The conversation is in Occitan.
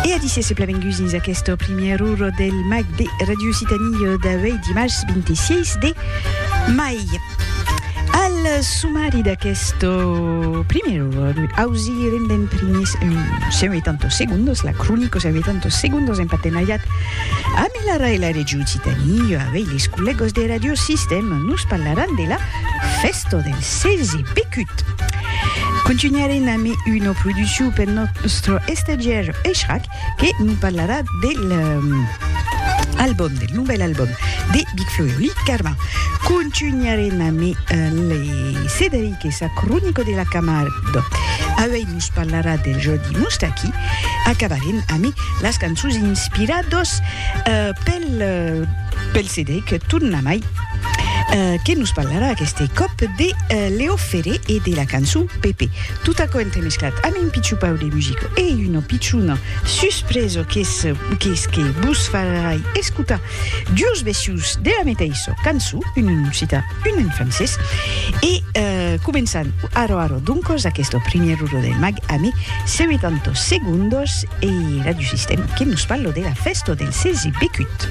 E a disse seplament gus dins aquesta primièr ora del mag de Radio Occitanie d'avei dimars 26 de mai. Al sumari d'aquesta primièr ora ausirem d'en primers 180 segundos, la cronica 180 segundos en partenariat amb l'ARA e la Radio Occitanie. Avei les collègas de Radio Sistema nos parlaràn de la festa del Sèlzi pecut! Contunharem amb una produccion per nòstre estagiaire Echrac que nos parlarà de l'album, del novèl album de Big Flo e Oli Carmin. Contunharem amb Cederic e sa cronica de la Camargue. Auèi nos parlarà del Jordi Moustaki. Acabarem amb las cançons inspiradas pel Cederic, tornamai. que nos parlarà aqueste còp de Leo Ferré e de la cançon Pepe. Tot aquò entremesclat amb un pichupau de musica e una pichona suspresa qu'es qu'es que vos farai escotar duos vecius de la meteissa cançon, un en occitan, un en francés, e començan ara ara doncas aquesta primièr ora del mag ame 70 segondas e Radio Sistèm que nos parla de la fèsta del 16 becut.